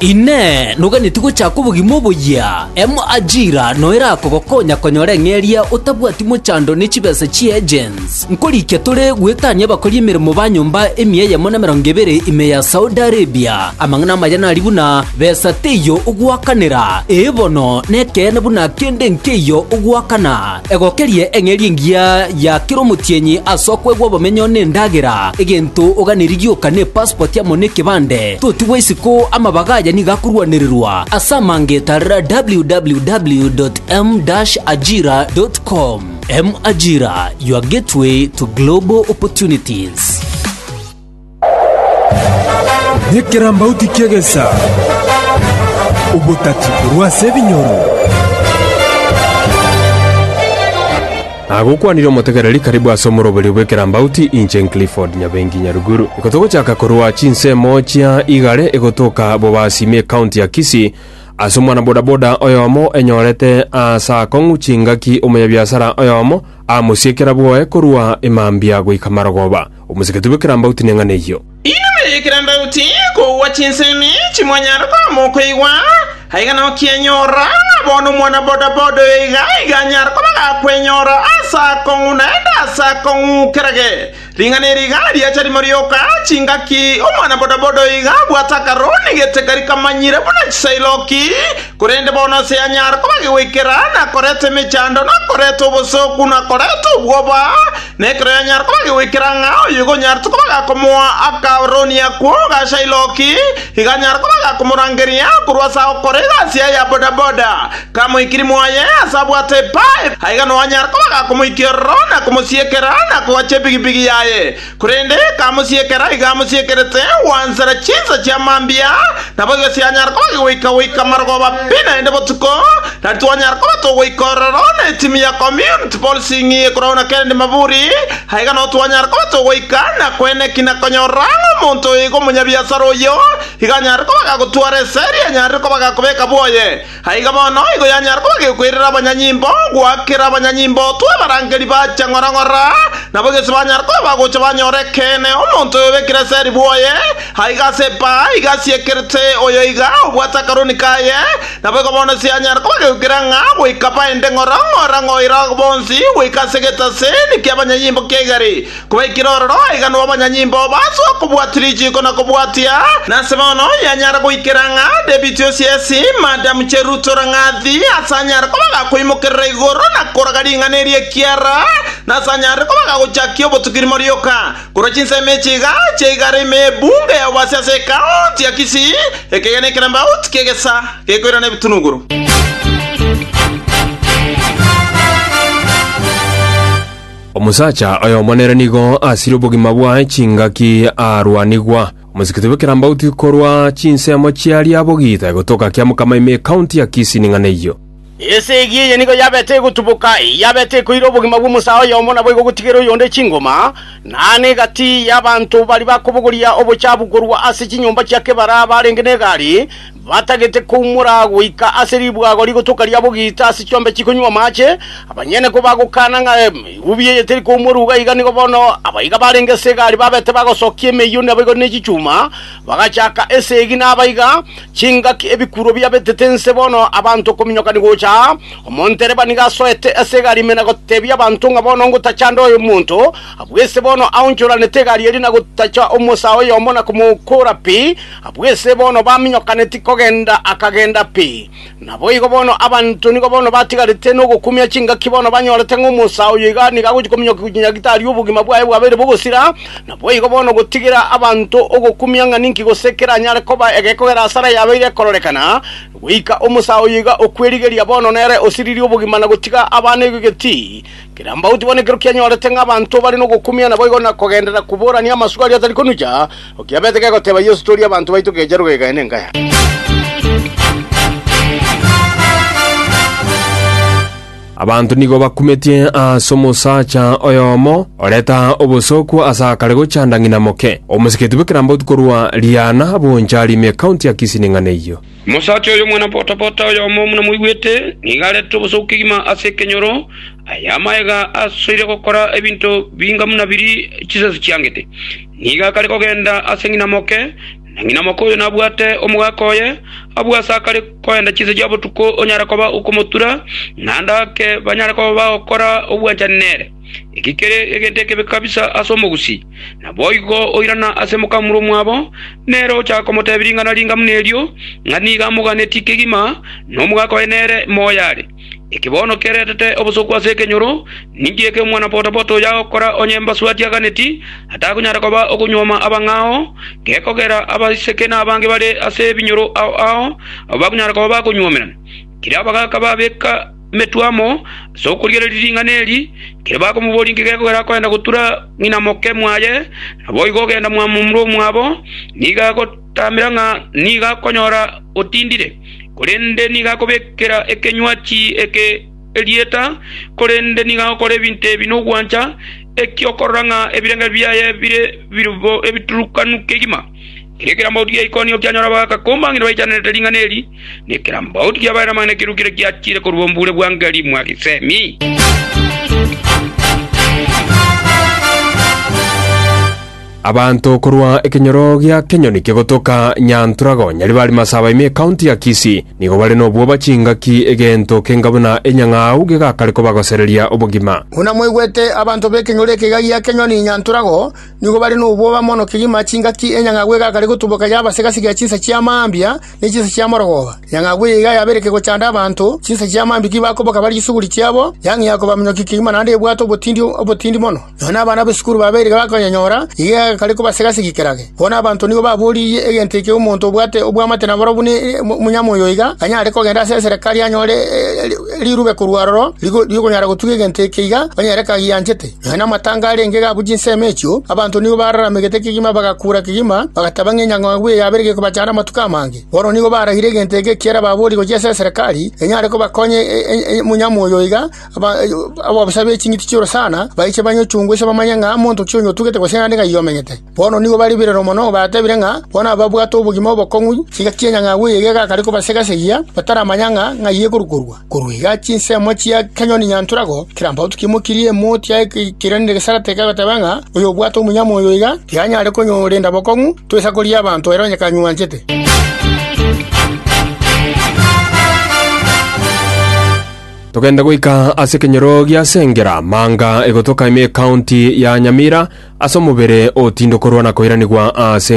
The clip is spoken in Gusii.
Inee! Noganetie gochaka obogima oboyia? Emo Ajira noyo erakogokonya konyora eng'e eria otabwati mochando ne chibesa chie agents. Nkorikia tore gwetania abakori emeremo ba nyomba emia eyemo na emerongo ebere ime ya Saudi Arabia. Amang'ana amaya nari buna, Besa teiyo ogoakanera, ee bono, nekeene buna kende nkeiyo ogoakana. Egokerie eng'eria engiya ya kera omotienyi ase okwegwa obomenyo nendagera. Egento oganeri gioka nepaspoti amo nekebande. Totigwa isiko, amabaga aya nigo akorwanererwa. Ase amangeta rra www.m-ajira.com M-Ajira, your gateway to global opportunities. Nekerambauti ki'egesa, obotati korwa ase ebinyoro. Nagokwanire omotegereri karibu ase omoroberio bw'ekerambauti, inche Clifford Nyabengi Nyaruguru. Ikotogochaka korwa chinsemo chia igare egotoka Bobasimi ekaunti ya Kisii, ase omwana bodaboda oyomo enyorete ase akong'u chingaki omonyabiasara oyomo amosiekera bwoye korwa Imambia goika Marogoba. Omosegete bw'ekerambauti neng'ana eyio. Inwe ekerambauti, kogwa chinsemi chimonyare koama okoigwa, aiga nokienyora, ng'a bono omwana bodaboda oyo iga iga anyare koba gakwenyora ase akong'u naende ase akong'u. Kerage ring'ana eri iga riacha rimo rioka, chingaki omwana bodaboda oyo iga abwate akaro nigete kari kamanyire buna chisairoki, korende bono ase yanyare koba gegoikera, nakoreta emechando, nakoreta obosooku, nakoreta obwoba, Nekero yanyara koba gegoikera ng'a oyo igo onyarete koba gakomoa akaoroni akwo gasha iroki, iga anyara koba gakomorangeria korwa ase agokora egasi yaye ya bodaboda. Kamoikiri mwaye ase abwate epipe, aiga noo anyara koba gakomoikia ororo na komosiekera na kogacha epigipigi yaye. Korende kamosiekera iga amosiekerete gwansera chinsa chia mambia, nabo egesio yanyara koba gegoika goika marogoba pi naende botuko, Nari twanyara koba togoika ororo na etimi ya community policing ekorwao na Kennedy Maburi, aye iga nao twanyara koba togoika na kweneki na konyorora ng'a omonto oyo iga omonyabiasara oyio iga anyare koba gagotwara esegi anyarire koba gakobeka bwoye. Aye iga bono igo yanyara koba gekoirera abanyanyimbo goakera abanyanyimbo otwe abarangeri ba chang'orang'ora nabo gese banyara koba bagocha banyora ekeene omonto oyo obekire esegi bwoye aiga ase epaa iga asiekerete oyo iga obwate akaroni kaye Naboigo bono sianyara kobageukera ng'a goika baende ng'ora ng'ora ng'oira bonsi goika ase egetaseni ki'abanyanyimbo ki'egari, kobaikire ororo aiganwe abanyanyimbo basoe kobwatia richiiko na kobwatia. Nase bono yanyara goikera ng'a David o Siesi, Madam Cheruto Rang'athi, ase anyare kobaga koimokerera igoro na koraga ring'ana eri ekiara, nase anyare kobaga gochakia obotuki rimo rioka. Korwa chinsemo echi iga chiaigara ime y'ebunge y'oboasi ase ekaonti ya Kisii, ekegena ekerambauti ki'egesa gekoirana ebitunuguru. Omosacha oyomo nere nigo asire obogima bwaye chingaki arwanigwa. Omosikiti bw'ekerambauti korwa chinsemo chiaria abogite gotoka kiamokama ime ekaonti ya Kisii ning'ana eyio. Esegi eye nigo yabete egotuboka, eyabete ekoira obogima bw'omosae oyomo nabo egogotigera oyonde chingoma, na aane egati y'abanto baria bakobogoria obochaabu korwa ase chinyomba chia kebara abarenge n'egari, batagete koumora goika ase ribwago rigotoka ria bogiita ase chiombe chikonywa amache, abanyene kobagokana ng'a erubi eye teri koumorwa iga nigo bono abaiga barenge ase egari babete bagosokia emeyio naboigo ne chichuma, Bagachaka esegi nabaiga chingaki ebikuro biabetete nse bono abanto kominyoka nigocha. Omontereba nigo asoete ase egari ime na gotebia abanto ng'a bono ngotachanda oyo omonto abwese bono aonchoranete egari eria na gotacha omosaa oyomo na komokoora pi abwese bono baminyokaneti kogenda akagenda pi. Naboigo bono abanto nigo bono batigarete nogokumia chingaki bono banyorete ng'a omosaa oyo iga nigo agochia kominyoka gochia gitari obogima bwaye bwabeire bogosira. Naboigo bono gotigera abanto ogokumia ng'a ninki gose keranyare koba egekogera asare yabeire ekororekana, goika omosaa oyo iga okwerigeria bono nere osiririe obogima na gotiga abana egetii Kirambauti bono ekero kianyorete ng'a abanto bare nogokumia naboigo na kogenderera koborania amasuko aria atari konucha, okiabete kegoteba Yeso, Toria abanto baito keecha rogega yaye nenka yane. Abanto nigo bakumetie ase omosacha oyomo oreta obosooku ase akare gochanda ng'ina moke. Omosiketi bw'ekerambauti korwa Riana boncha arime ekaunti ya Kisii ning'ana eyio. Omosacha oyo omwana-botabata oyomo buna moigwete, nigo arete obosooku kegima ase ekenyoro, aye amaega asoire gokora ebinto binga buna biria chisasi chiangete. Nigo akare kogenda ase ng'ina moke, na ng'ina moke oyo nabwate omogaka oye, abwo ase akare koenda chinsa chia botuko onyare koba okomotura, naende ake banyare koba bagokora obwanchani nere. Eki kere egento ekebe kabisa ase omogusii. Naboigo oirana ase mokamura omwabo, nere ochaka komotebia ring'ana ringa buna erio, ng'a nigo amoganetie kegima, na omogaka oye nere moyo are. Eki bono keretete obosooku ase ekenyoro, ninki eke omwana-bodaboda oyo agokora onye embasu atiaganeti, atakonyara koba okonyuoma abang'a ao, gekogera abaiseke na abange bare ase ebinyoro ao ao, abwo bakonyara koba bakonyuomerana? Kera abagaka babeka emetwamo ase okorigereria ring'ana eri, ekero bakomoboria inki gekogera akoenda gotura ng'ina moke mwaye, naboigo ogenda mwamomura omwabo, nigo agotaamera ng'a nigo akonyora otindire, korende nigo akobekera ekenywachi eke erieta, korende nigo agokora ebinto ebi nogwancha, eki'okorora ng'a ebirengererio biaye bire ebiturukanu kegima. Erio kera mouti gia Ikonio kianyora abagakumba ng'a nibaichanerete ring'ana eri, na ekera mbauti kiabaere amang'ana ekirukire kiachiire korwa omobuure bwa Ngeri mwa Gesemi. Abanto korwa ekenyoro gia kenyoni kegotoka Nyantrago Nyaribari Masaba ime ekaunti ya Kisii nigo bare nobwoba chingaki egento kenga buna enyang'au gegakare kobagosereria obogima. Buna mwaigwete abanto b'ekenyoro eke egaa gia kenyoni Nyantrago, Nigo bare nobwoba mono kegima chingaki enyang'agwa egakare gotuboka yaba ase egasi ya chinsa chia mambia ne chinsa chia morogooba. Enyang'agwa eye iga yabereke gochanda abanto, chinsa chia mambia tibakoboka bare chisuguri chiabo, yang'ia kobaminyokia kegima naende ebwate obotindi obotindi mono. Nonya abana b'esukuru babere iga bakonyanyora, iga egakare koba ase egasi gikerage. Bono abanto nigo baboririe egento eke omonto obwate obwamate na barobwo ne omonyama oyo iga anyare kogenda ase eserekari anyore rirube korwa aroro ri'okonyara gotuga egento eke iga onye ere kagianchete. Nonya namatanga arenge gabwo chinsemo echio, abanto nigo bararamegete kegima bagakuura kegima, bagateba ng'a enyang'au eye yabeire gekobachanda amatuko amange. Bono nigo baragire egento eke ekiera baborie gochia ase eserekari, enyare kobakonya omonyama oyo iga ababosa be ching'iti chi'orosana baiche banyochungwe ase bamanye ng'a monto ki oyotugete gose naende ng'ai omenyete. Bono nigo baribererwe mono, batebire ng'a bono ababwate obogima obokong'u chiga chi'enyang'au eye egeka kare kobasegesegia, bataramanya ng'a ng'ai ekorukorwa. Korwa iga chinsemo chia kenyoni nyantorago, kera mbato kimokirie emoti yaye keikiranire gesarate kegoteba ng'a, Oyobwate omonyama oyo iga, tiyanyare konyorenda bokong'u, toisa koria abanto ere onye kanywanchete. Togende goika ase ekenyoro gia Sengera, manga egotoka ime Ekaonti ya Nyamira, ase omobere otindo korwa na koiranigwa ase